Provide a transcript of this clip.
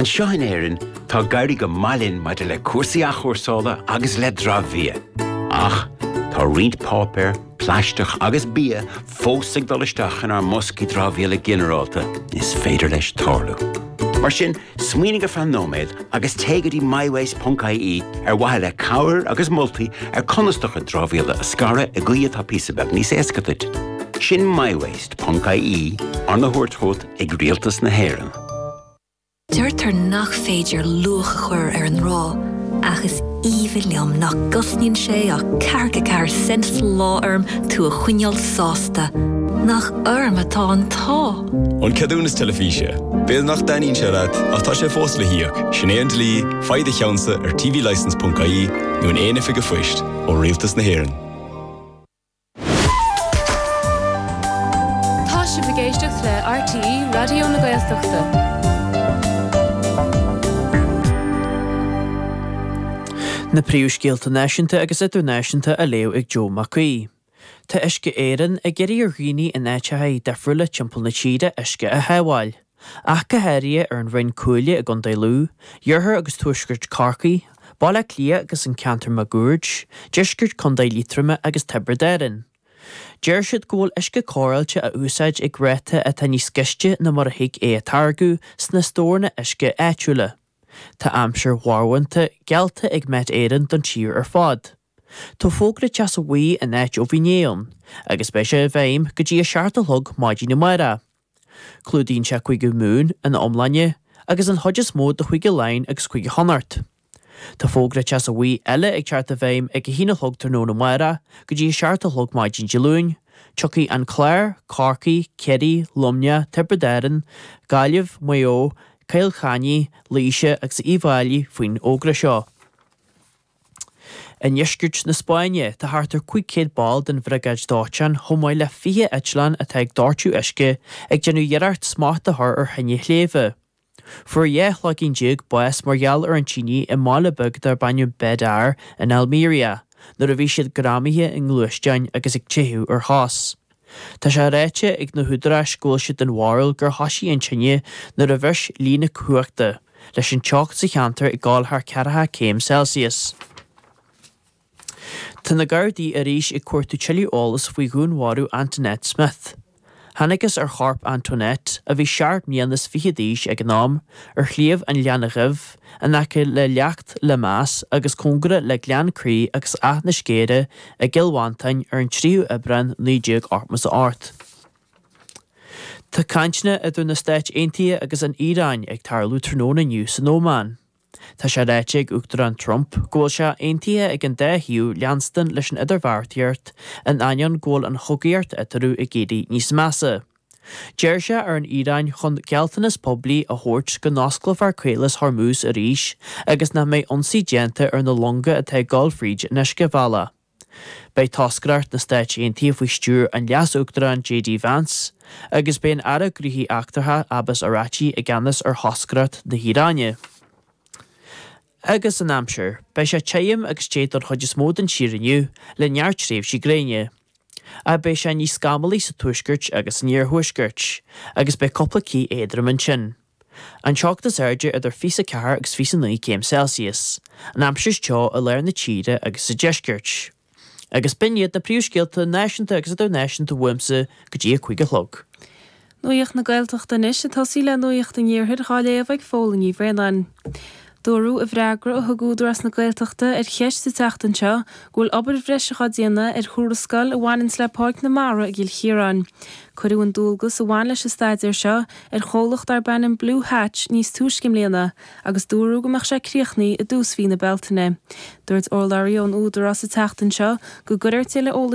Anseo in Éirinn, tá ag éirí go maith linn maidir le cúrsaí athchúrsála agus le dramhbhia. Ach tá roinnt páipéar, plaisteach agus bia fós ag dul isteach inár mboscaí dramhaíola ginearálta, is féidir leis tarlú. Mar sin, smaoinigh ar feadh nóiméad agus téigh go dtí mywaste.ie ar mhaithe le cabhair agus moltaí ar conas do chuid dramhaíola a scaradh i gcaoi atá píosa beag níos éasca duit. Sin mywaste.ie, arna thabhairt chugat ag Rialtas na hÉireann. Deirtear nach féidir luach a chur ar an ngrá, ach is aoibhinn liom nach gcosnaíonn sé ach ceathracha ceathair cent sa lá orm tú a choinneáil sásta. Nach orm atá an t-ádh! An ceadúnas teilifíse. B'fhéidir nach dtaitníonn sé leat, ach tá sé fós le híoc, sin é an dlí, faigh do cheannsa ar tvlicence.ie nó in aon oifig an phoist ó Rialtas na hÉireann. Tá sibh ag éisteacht le RTÉ Raidió na Gaeltachta. Na príomhscéalta náisiúnta agus idirnáisiúnta á léamh ag Joe Mac Aoidh. Tá Uisce Éireann ag iarraidh ar dhaoine in áiteachaí difriúla timpeall na tíre uisce a shábháil. Ach go háirithe ar an Rinn Cuaille i gContae Lú, iarthar agus tuaisceart Chorcaí, Baile Átha Cliath agus an ceantar máguaird, deisceart Chontae Liatroma agus Tiobraid Árann. Deir siad go bhfuil uisce cóireáilte á úsáid ag ráta atá níos gaiste ná mar a thig é a táirgeadh sna stóranna uisce áitiúla. Tá aimsir mharbhánta geallta ag Met Éireann don tír ar fad. Tá fógra teasa bhuí in áit ó bhí inné ann agus beidh sé i bhfeidhm go dtí a seacht a chlog maidin amárach. Clúdaíonn sé Cúige Mumhan ina iomláine, agus an chuid is mó de Chúige Laighean agus Cúige Chonnacht. Tá fógra Teasa Bhuí eile ag teacht i bhfeidhm ag a haon a chlog tráthnóna amárach go dtí a seacht a chlog maidin Dé Luain, tiocfaidh an Clár, Corcaigh, Ciarraí, Luimneach, Tiobraid Árann, Gaillimh, Maigh Eo, Cill Chainnigh, Laoise agus Uíbh Fháilí faoin fhógra seo. I ndeisceart na Spáinne, tá thart ar 500 ball den Bhriogáid Dóiteáin, chomh maith le 20 eitleán atá ag doirteadh uisce, ag déanamh iarracht smacht a chur ar thine shléibhe. Fuair dhá chloigeann déag bás mar gheall ar an tine i mbaile beag darb ainm Bédar in Almería, nuair a bhí siad greamaithe i ngluaisteáin agus ag teitheadh ar chos. Tá sé ráite ag na húdaráis go bhfuil siad den bharúil gur thoisigh an tine nuair a bhris líne cumhachta, leis an teocht sa cheantar ag dul thar ceathracha céim Celsius. Tá na Gardaí arís ag cuartú tuilleadh eolais faoi dhúnmharú Antoinette Smith. Thángthas ar chorp Antoinette, a bhí seacht mbliana is fiche d'aois ag an am, ar Shliabh an Ghleanna Dhuibh, in aice le Leacht Lemass agus cóngarach le Gleann Crí agus Áth na Scéire i gCill Mhantáin ar an 3ú Aibreán 1988. Tá cainteanna idir na Stáit Aontaithe agus an Iaráin ag tarlú tráthnóna inniu san Óman. Tá sé ráite ag Uachtarán Trump go bhfuil sé aontaithe ag an dá thaobh leanstan leis an idirbheartaíocht in ainneoin go bhfuil an chogaíocht eatarthu ag éirí níos measa. D'iarr sé ar an Iaráin chun gealltanas poiblí a thabhairt go n-osclófar Caolas Hormuz arís agus nach mbeidh ionsaí déanta ar na longa atá ag dul fríd an uiscebhealach. Beidh toscaireacht na Stáit Aontaithe faoi stiúir an Leas-Uachtaráin JD Vance agus beidh an Aire Gnóthaí Eachtracha Abbas Araghchi i gceannas ar thoscaireacht na hIaráine. Agus an aimsir? Beidh sé tirim agus te don chuid is mó den tír inniu, le neart tréimhsí gréine. Ach beidh sé níos scamallaí sa tuaisceart agus san iarthuaisceart, agus beidh cúpla cith éadrom ansin. An teocht is airde idir 24 agus 29 céim Celsius. An aimsir is teo i lár na tíre agus sa deisceart. Agus b'in iad na príomhscéalta náisiúnta agus idirnáisiúnta uaimse go dtí a cúig a chlog. Nuacht na Gaeltachta anois, ag tosaí le Nuacht an Iarthair, á léamh ag Orla Ní Bhraonáin. Dúradh i bhfreagra a thug Údarás na Gaeltachta ar cheist sa tseachtain seo go bhfuil obair bhreise á déanamh ar thuarascáil a bhaineann le Páirc na Mara i gCill Chiaráin. Cuireadh an dualgas a bhain leis an staidéar seo ar chomhlacht darb ainm Blue Hatch níos túisce i mbliana, agus dúradh go mbeadh sé críochnaithe i dtús mhí na Bealtaine. Dúirt urlabhraí ón Údarás sa tseachtain seo go gcuirfear le